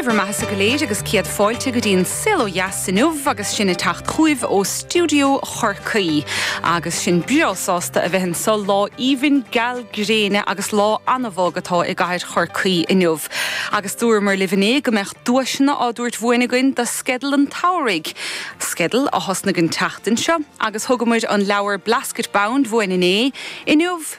Dé bhur mbeathasa go léir agus céad fáilte go dtí an Saol Ó Dheas inniu agus sinn ag teacht chugaibh ó stiúideo Chorcaí agus sinn breá sásta a bheith anseo lá aoibhinn geal gréine agus lá an-bhog atá i gcathair Chorcaí inniu. Agus dúramar libh inné go mbeadh duaiseanna á dtabhairt bhuain againn do Sceideal an tSamhraidh, sceideal a thosnaigh an tseachtain seo agus thugamar an leabhar Blasket Bound bhuain inné, inniu,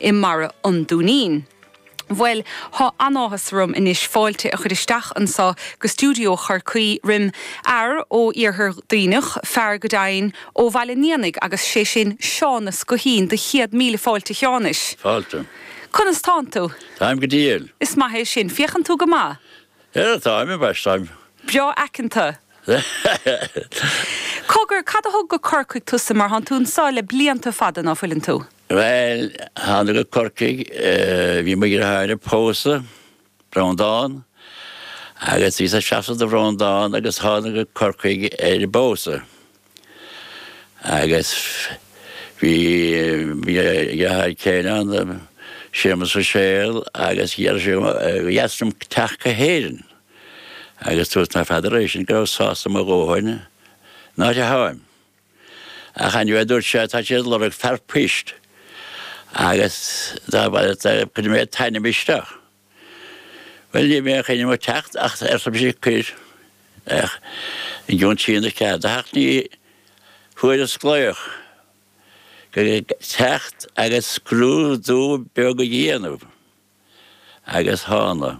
i mBarra an Dúinín. Bhuel, thá an-áthas orm anois fáilte a chur isteach anso go stiúideo Chorcaí, roim fhear ó Iarthar Duibhneach, fear, go deimhin, ó Bhaile an Éanaigh agus 'sé sin Seán Mac an tSíthigh, do chéad míle fáilte a Sheáin! Fáilte. Conas tánn tú? Táim go diail. Is maith é sin. Féachann tú go maith. Aye, táim, a mhais, táim. Breá aiceanta. Cogar, cad a thug go Corcaigh tusa, mar thánn tú anso le blianta fada, ná fuileann tú? Bhail, thánag go Corcaigh, bhí mo dhreatháir ag pósadh, Breandán, agus bhíos ag seasamh do Bhreandán agus thánag go Corcaigh ar an bpósadh. Agus bhí mo dhreatháir céile ann, Séamus Ó Séaghdha, agus d'iarr sé an mhaith liom teacht go hÉirinn agus tabhairt faoi Pheadar Uí Uiginn go rabhas sásta mo dhóthain in áit a táim. Ach an rud a dúirt sé, tá siad ag lorg fear poist agus dá bharr de, cuirfidh mé t'ainm isteach. Bhuel, níl mé ag cuimhneamh ar theacht ach, arsa mise, cuir, ach i gcionn trí nó ceathair de sheachtainí fuaireas glaoch teacht agus scrúdú beag a dhéanamh. agus thána.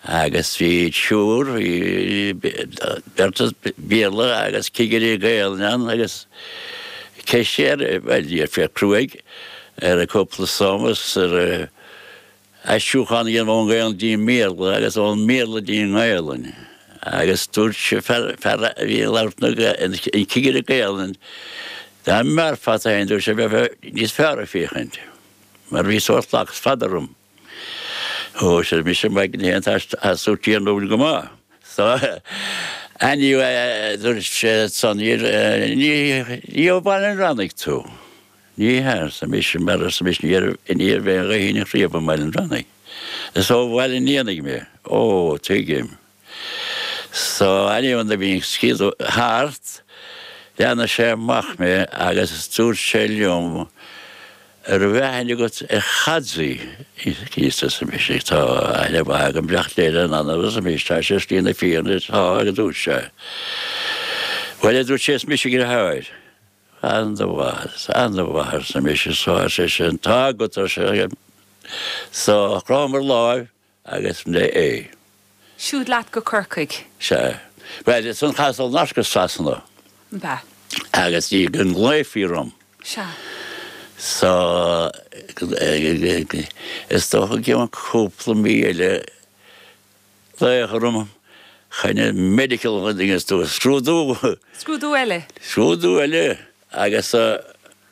Agus bhí triúr, beirt as Béarla agus cigire Gaelainne ann agus cheist sé orm, bhuel, d'iarr sé orm cúpla aistriúchán a dhéanamh ón Ghaelainn dtí an mBéarla agus ón mBéarla dtí an nGaelainn. Agus dúirt an fear a bhí ag labhairt na, an cigire Gaelainne, dá mbearrfá tú féin, dúirt sé, bheifeá níos fearr ag féachaint. mar bhí sórt locks fada orm. Ó, arsa mise, an bhfaighidh mé aon tsaghas asúit iarnóin go maith? Tá, Annie, a dúirt sé, tá, níl, ní, ní ó Bhaile an Reannaigh tú? Ní hea, arsa mise, mar, arsa mise, ní raibh, ní raibh aon tSítheach riamh i mBaile an Reannaigh. Is ó Bhaile an Éanaigh mé. Ó, tuigim. So nuair a bhí an scian thart, lean sé amach mé agus dúirt sé liom, An raibh aithne agat ar Chadzy? Críost, arsa mise, tá aithne mhaith agam air, beannacht Dé lena anam, arsa mise, tá sé ar shlí na fírinne, tá, a dúirt sé. Bhuel, a dúirt sé, is mise a dhriotháir. An-mhaith, an-mhaith, arsa mise, so, ar seisean, tá agat, ar seisean. So, chroitheamar lámh. Agus mé é. Siúd leat go Corcaigh. Sea. Bhuel, ansan chuas thar n-ais go Sasana. An b'ea? Agus nó go nglaofaí orm. Sea. Sea. Is dócha i gceann cúpla mí eile glaodhadh orm chun an medical thing is tú, scrúdú. Scrúdú eile. Scrúdú eile. Agus.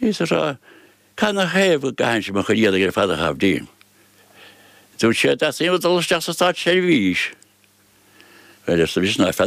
Is a rá, canathaobh go gcaithfinnse mo chuid éadaigh ar fad a chaitheamh díom? Dúirt sé, Teastaíonn uait dul isteach sa Státseirbhís. Bhuel, arsa mise, n'fheadar.